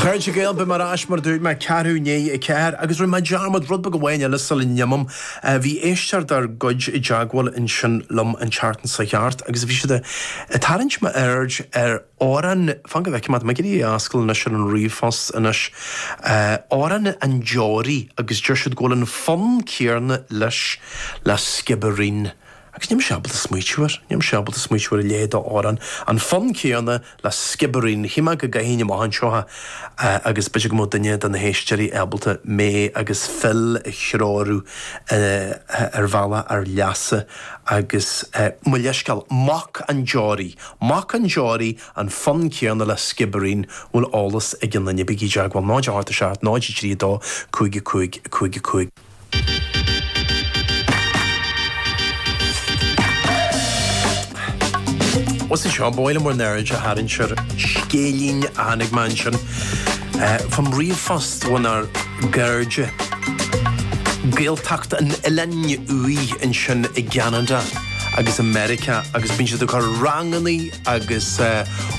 Chairde Gael, beidh mé ar ais mar a dúirt mé, ceathrú i ndiaidh a ceathair, agus rinne mé dearmad, rud beag amháin eile sula n-imím. Bhí éisteoir dár gcuid i dteagmháil ansin liom an tseachtain seo thart agus bhí siad ag tarraingt m'aird ar amhrán, fan go bhfeicim, tá mé ag iarraidh é a fhoscailt anois ar an ríomhphost anois, amhrán an deoraí agus deir siad go bhfuil an fonn céarna leis le Skibbereen. Agus níl mise ábalta smaoitiú ar, níl mise ábalta smaoitiú ar a leithéid d'amhrán, an fonn céanna le Skibbereen, shíl mé go gcaithfinn amach anseo é agus b'fhéidir go mbeadh duine de na héisteoirí ábalta mé agus Phil a threorú ar bhealach ár leasa agus mo leithscéal, Mac an Deoraí, Mac an Deoraí, an fonn céanna le Skibbereen, an bhfuil eolas ag aon duine, bígí i dteagmháil, 0, 8, 7, 0, 3, 2, 5, 5, 5, 5. Agus anseo, ba mhaith liom bhur n-aird a tharraingt ar scéilín a tháinig chugam ansin i bhfoirm ríomhphost ónár gcairde Gaeltacht an Oileáin Úir ansin i gCeanada agus i Meiriceá agus bíonn siad ag cur ranganna agus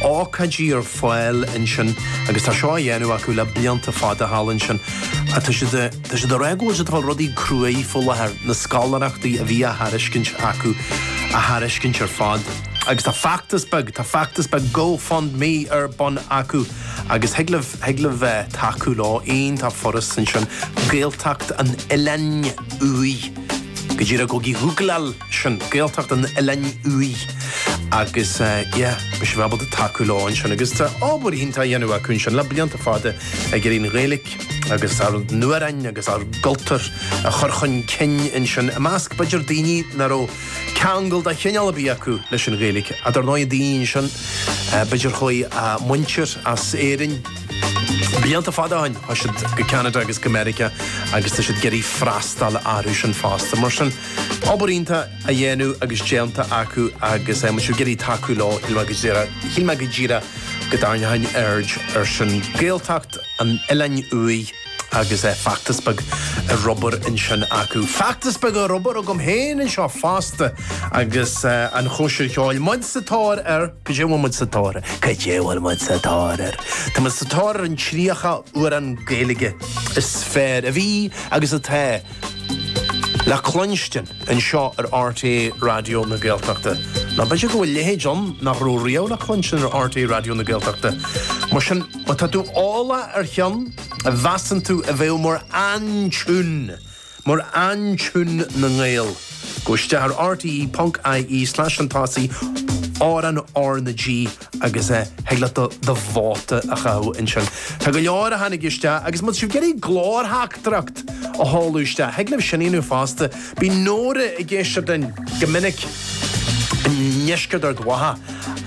ócáidí ar fáil ansin agus tá seo á dhéanamh acu le blianta fada thall ansin. Tá siad i. Tá siad ag rá go bhfuil siad ag fáil rudaí cruaidh faoi láthair, na scoláireachtaí a bhí á thairiscint acu a thairiscint ar fad. Agus tá feachtas beag, tá feachtas beag Go Fund Me ar bun acu agus thig libh, thig libh bheith, tacú leo. Em, tá foras ansin, Gaeltacht an Oileáin Úir, go díreach go dtí ghoogleáil sin, Gaeltacht an Oileáin Úir agus yeah, beidh sibh ábalta tacú leo ansin. Agus tá obair iontach á dhéanamh acu ansin le blianta fada ag iarraidh an Ghaeilge, agus ár n-amhráin agus ár gcultúr a chur chun cinn ansin, i measc, b'fhéidir, daoine nach raibh ceangal de chineál ar bith acu leis an Ghaeilge. Ach dar ndóigh, daoine ansin, b'fhéidir, chuaigh a muintir as Éirinn blianta fada ó shin, chuaigh siad go Ceanada agus go Meiriceá agus tá siad ag iarraidh freastal orthu sin fosta. Mar sin, obair iontach á dhéanamh agus déanta acu agus má tá sibh ag iarraidh tacú leo, shíl mé go díreach, shíl mé go díreach go dtarraingeoinn aird ar sin. Gaeltacht. an Oileáin Úir agus é feachtas beag ar obair ansin acu. Feachtas beag ar obair agam féin anseo fosta agus an chóisir cheoil. Muid sa tóir ar, cad é a bhfuil muid sa tóir ar? Cad é a bhfuil muid sa tóir ar? Tá muid sa tóir ar an 30 amhrán Gaeilge is fearr a bhí agus atá. le cluinstin anseo ar RTÉ Raidió na Gaeltachta. Nó b'fhéidir go bhfuil leithéid ann nach raibh riamh le cluinstin ar RTÉ Raidió na Gaeltachta. Mar sin, má tá tú eolach ar cheann a mheasann tú a bheadh mar aintiún, mar aintiún na nGael, gabh isteach ar rte.ie slash an tosaigh, amhrán R na G, agus eh, thig leat do, do vóta a chaitheamh ansin. Tá go leor a tháinig isteach agus muid sibh ag iarraidh glórtheachtaireacht a sheoladh isteach. Thig libh sin a dhéanamh fosta. Bíonn Nóra i gceist dúinn go minic i ndeisceart Ard Mhacha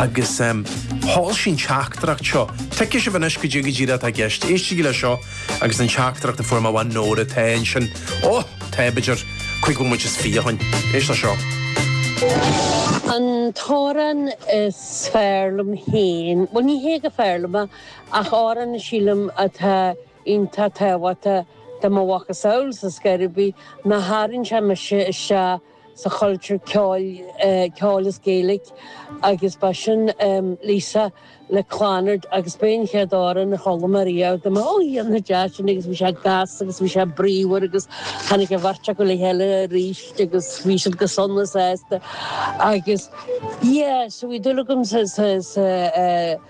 agus em, sheol sí an teachtaireacht seo. Tuigfidh sibh anois caidé, caidé an rud atá i gceist. Éistigí leis seo. agus sin teachtaireacht a fuair mo bhean Nóra tá, ansin. Ó! Tá b'fhéidir cúig bhomaite is fiche ann. Éist le seo. An t-amhrán is fearr liom féin, bhuel ní hé go fearr liom é ach amhrán a sílim atá iontach tábhachtach do mo mhacasamhail sa, is cá bith, ná tharraing sé mise isteach, sa chultúr ceoil is Gaeilge agus ba sin Lisa le Clannad agus ba é an chéad amhrán a chuala mé riamh de M'anam ó hé na deasa sin agus bhí sé deas agus bhí sé bríomhar agus tháinig an bheirt acu le chéile arís agus bhí siad go sona sásta agus yeah so bhí dúil agam sa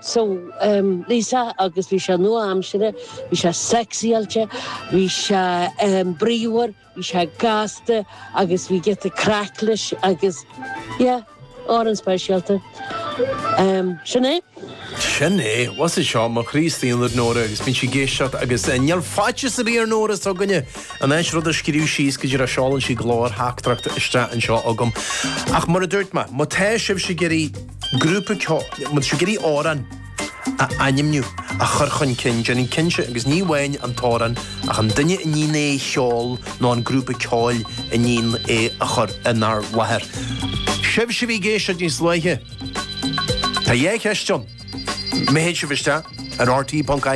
So, Lisa, agus bhí sé nua-aimseartha, bhí sé sexy-áilte, bhí sé bríomhar, bhí sé gasta agus bhí giota craic leis agus, yeah, amhrán speisialta. Sin é. Sin é. Bhus é seo mo chroí is aonair, Nóra, agus bíonn sí ag éisteacht agus níl faitíos ar bith ar Nóra seo againne, in áit rud a scríobh síos, caidé ach seolann sí glórtheachtaireacht isteach anseo chugam. Ach mar a dúirt mé, má tá sibhse ag iarraidh. grúpa ceoil, muid ag iarraidh amhrán a ainmniú, a chur chun cinn, déanaigí cinnte, agus ní amháin an t-amhrán ach an duine a ndéanann é a cheol nó an grúpa ceoil a ndéanann é a chur inár láthair. Sibhse a bhí ag éisteacht níos luaithe, tá dhá cheist ann. Má théann sibh isteach ar RTÉ.ie.